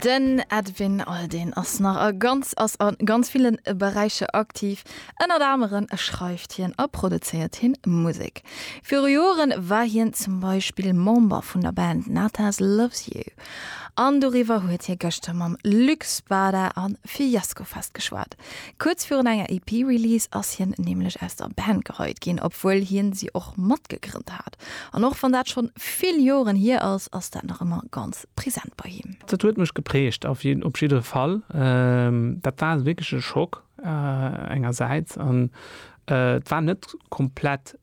Den Edwin Aldin ass nach a ganz ass a ganz villen Beräicher aktiv. Ënnert aneren schreift hien a produzéiert hien Musek. Viru Joren war hien zum Beispill Member vun der Band Natas Loves You. An doriwwer huet hie gëschter mam Luc Spada a Fiasco Fest geschwat. Kuerz virun enger EP-Release ass hien nämlech aus der Band geheit ginn, obwuel hien si och matgegrënnt hat. An och wann dat schonn vill Joren hier ass, ass dat nach ëmmer ganz present bei him. Dat huet mech geprägt auf jiddere Fall. Dat war wierklech e Schock engersäits an et war net komplett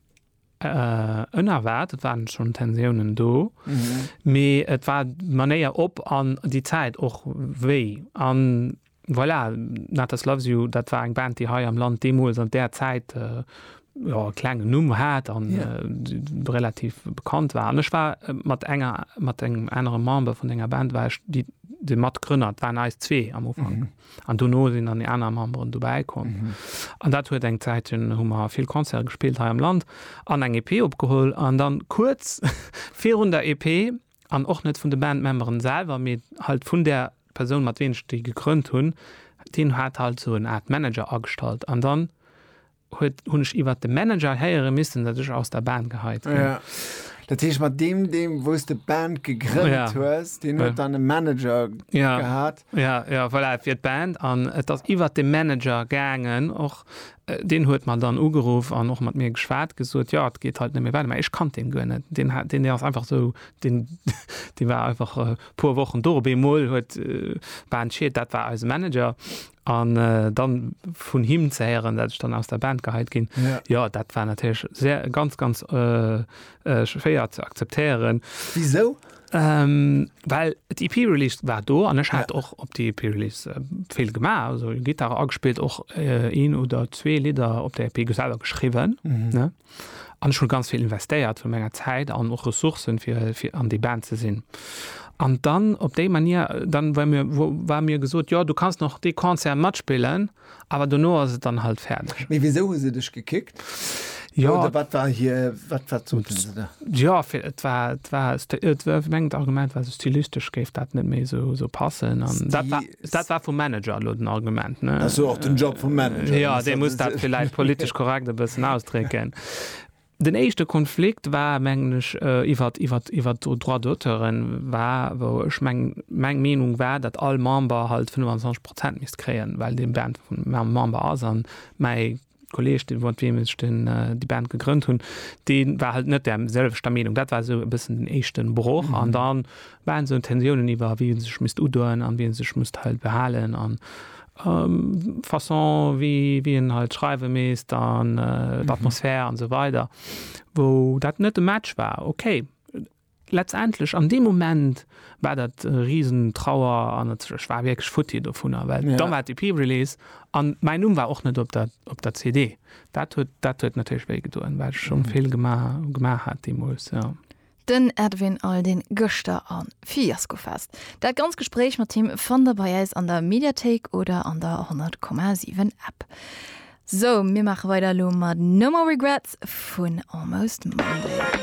ënnerwaart, et waren schonn Tensiounen do, mee et war d'Manéier op an déi Zäit och wéi. Voilà, Natas Loves You, dat war eng Band, déi hei am Land deemools an där Zäit e klengen Numm hat a relativ bekannt war. An ech war mat enger, mat engem anere Member vun denger Band war ech déi, de Matgrënner, et waren eis zwee am Ufank. An dono sinn dann déi aner Memberen dobäi komm. An dat huet eng Zäit, hunn, hu mer vill Concerte gespillt hei am Land an eng EP opgeholl. An dann kuerz virun der EP An och net vun de Bandmemberen selwer, mee halt vun där Persoun mat ween ech déi gegrënnt hunn. Deen hat halt esou en Art Manager agestallt an dann huet hunn ech iwwert de Manager héiere missen, datt ech aus der Band geheit ginn. Ja, dat heescht mat deem deem wou s de d'Band gegrënnt hues, deen huet dann e Manager gehat? Jo, jo, voilà, et wier d'Band an et ass iwwert de Manager gaangen och. Deen huet mer dann ugeruff an och mat mir geschwat, gesot, jo, et geet halt net méi weider. Mä ech kannt deen guer net. Deen hat, deen ass einfach esou, deen, dee war einfach e puer Wochen do. Op eemol huet d'Band Schied, dat war eise Manager, an dann vun him ze héieren, dat ech dann aus der Band geheit ginn, jo, dat war natierlech sehr, ganz, ganz schwéier ze akzeptéieren. Wisou? Ähm, well d'EP Release war do an ech hat och op d'EP Release äh, vill gemaach, also Gitarre agespillt och äh, een oder zwee Lieder op der EP selber geschrieben. Mhm. Ne? An ech hun ganz viel investéiert vu menger Zäit an och Ressourcen fir, fir an déi Band ze sinn. An dann op déi Manier dann war mir, wo, war mir gesot, ja du kannst noch dee Concert matspillen, Awer dono ass et dann halt fäerdeg. Mee wisou hu se dech gekickt? Jo. Oder wat war hir, wat, wat soten se da? Jo, fir, et war, et war, et war, ech mengen d'Argument war esou, stylistesch géif dat net méi esou, esou passen an dat war, dat war vum Manager elo den Argument, ne? Dat ass jo och den Job vum Manager. Jo, dee muss dat villäicht politesch korrekt e bëssen ausdrécken. Den éischte Konflikt war, mengen ech, iwwert, iwwert, iwwert d'Droits d'auteuren war, wou ech meng, meng Meenung war, datt all Member halt 25 Prozent misst kréien, well dee Band Member ass. A mäi Kolleeg, dee mat deem ech den, déi Band gegrënnt hunn, dee war halt net där selwechter Meenung. Dat war esou e bëssen den éischte Broch. An dann Waren esou Tensiounen iwwer wie en sech misst udoen an wie en sech misst halt behalen an Façon wie wie en halt schreiwe misst an d'Atmosphär an esou weider wou dat net e Match war. Ok letztendlech an deem Moment war dat e riesen Trauer an ech war wierklech futti dovunner well da war d'EP-Release an mäin Numm war och net op der op der CD. Dat huet dat huet natierlech wéi gedoen well ech scho vill gemaach gemaach hat deemools jo. Den Edwin Aldin gëschter am Fiaskofest. Dat ganz Gespréich mat him fannt der bei äis an der Mediathéik oder an der 100,7 App. Sou, mir maache weider elo mat No More Regrets vun Almost Monday.